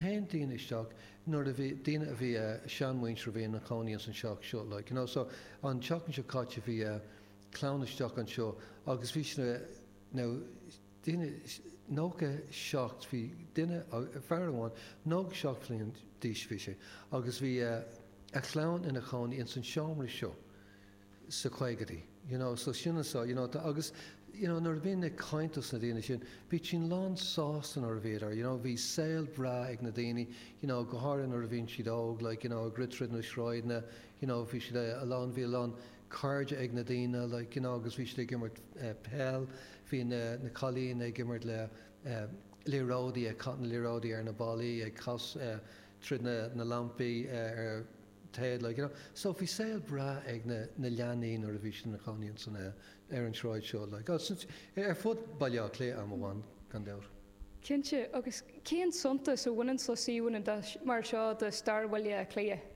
théann daoine isteach, nuair a bhí, daoine a bhí, seanmhuintir a bhí ina chónaí ins an teach seo, like, you know, so an tseachtain seo caite bhí clann istigh anseo agus bhí siad, now, daoine, nócha seacht, bhí duine, fear amháin, nócha seacht bhliain d'aois a bhí sé agus bhí a chlann ina chónaí ins an seomra seo, sa chaogaidí. You know, so sin an sá, you know, tá, agus, you know, nuair a bhínn ag caint dos na daoine sin, bhí siad lán sásta nuair a bhíodar, you know, bhí saol breá ag na daoine, you know, go háirithe nuair a bhíonn siad óg, like, you know, ag rith tríd na sráideanna, you know, bhí siad a lán, bhí a lán cairde ag na daoine, like, you know, agus bhí siad ag imirt eh peil, bhí na, na cailín ag imirt le eh liathróidí, ag caitheamh na liathróidí ar na ballaí, ag cas eh tríd na, na lampaí eh ar, teaghlaigh. You know, so bhí saol breá ag na, na leanaí nuair a bhí siad ina chónaí in san eh, ar an tsráid seo like, ar fud Bhaile Átha Cliath am amháin gan dabht. Cinnte, agus cén suntas a bhaineann le suíomhanna mar seo do stair Bhaile Átha Cliath?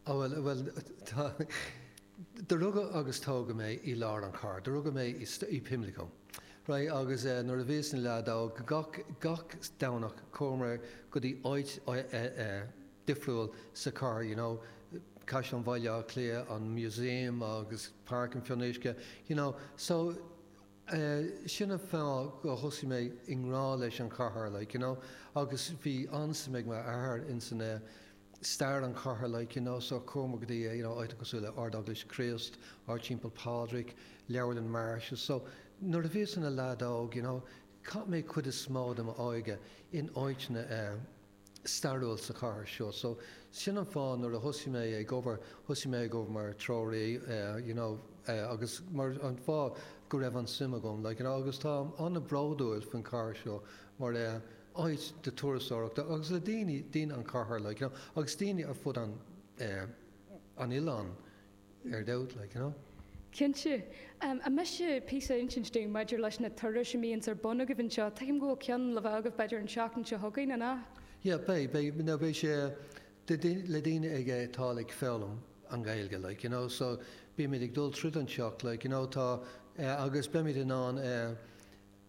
Oh bhuel, bhuel tá, do rugadh agus tógadh mé i lár an char, do rugadh mé i, i Pimlico right agus eh nuair a bhíos ina leaid óg gach, gach Domhnach chuamar go dtí áit eh, eh, eh, difriúil sa chathair, you know Caisleán Bhaile Átha Cliath, an Museum agus Páirc an Fionnuisce, you know. So, eh, sin an fáth gur thit mé i ngrá leis an chathair, like, you know. Agus bhí an-suim ag m'athair in san, eh, stair an chathair, like, you know. So chuamar go dtí, eh, you know, áiteanna cosúil le Ard-Eaglais Chríost, Ard Teampall Phádraig, Leabharlann Marsh's. So, nuair a bhíos ina leaid óg, you know, chaith mé cuid is mó de m'óige in áiteanna, eh, stairiúil sa chathair seo so sin an fáth nuair a thosaigh mé ag obair thosaigh mé ag obair mar treoraí you know agus mar an fáth go raibh an-suim agam like you know agus táim an-bhródúil faoin chathair seo mar áit turasóireachta agus le daoine daoine an chathair like you know agus daoine ar fud an an oileáin ar dóigh, like, you know. Cinnte. An miste píosa a insint dúinn maidir leis na turais a bhíonns ar bun agaibh anseo? Tuigim go bhfuil ceann le bheith agaibh b'fhéidir an seachtain seo chugainn, an ea? Yeah, beidh, beidh, no, beidh sé le daoine ag a atá ag foghlaim an Ghaeilge, like, you know, so beimid ag dul tríd an teach, like, you know, tá, agus beimid in ann eh,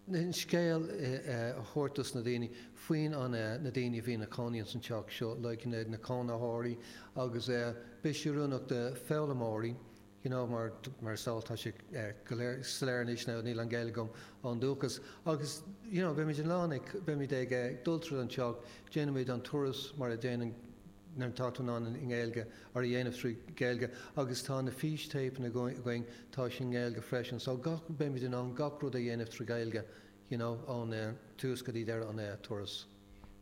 an scéal a thabhairt dos na daoine faoin an na daoine a bhí ina cónaí ins an teach seo like na na cónaitheoirí agus beidh sé oiriúnach do foghlaimeoirí you know mar mar is eol tá sé go soiléir anois now níl an Ghaeilge agam ón dúchas agus you know beimid in ann ag beimid ag dul tríd an teach déanaimid an turas mar a déanann nuair atá tú in ann i nGaeilge, é a dhéanamh trí Ghaeilge agus tá na fístéipeanna againn, tá sin i nGaeilge freisin. So gach, beimid in ann gach rud a dhéanamh trí Ghaeilge, you know, ón tús go dtí deireadh an turas.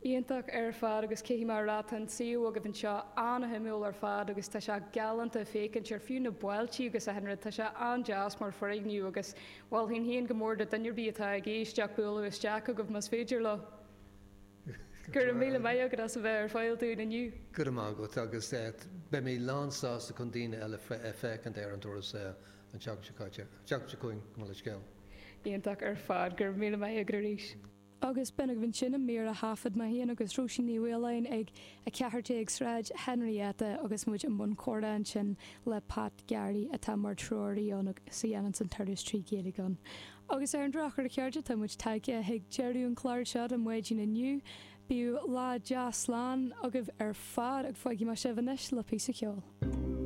Iontach ar fad agus caithfidh mé a rá, tá an suíomh agaibh anseo an-shuimiúil ar fad agus tá sé galánta féachaint ar fiú na ballaí agus chuile rud, tá sé an-deas mar foirgneamh agus mholfainn féin go mór do duine ar bith atá ag éisteacht bualadh isteach chugaibh más féidir leo. Go raibh míle maith agat as a bheith ar fáil dúinn inniu. Go raibh maith agat agus beidh mé lán sásta chun daoine eile a fheiceáil ar an turas an tseachtain seo caite, an tseachtain seo chugainn gabh mo leithscéal. Iontach ar fad. Go raibh míle maith agat arís. Agus b'in agaibh ansin an mír a thaifead mé féin agus Róisín Ní Mhaoláin ag 14 Sráid Henrietta agus muid i mbun comhrá ansin le Pat Garry atá mar treoraí ann agus a dhéanann an turas trí Ghaeilge ann. Agus ar an drochuair, a chairde, tá muid tagtha chuig deireadh an clár seo don mhaidin inniu. Bíodh lá deas slán agaibh ar fad agus fágfaidh mé sibh anois le píosa ceoil.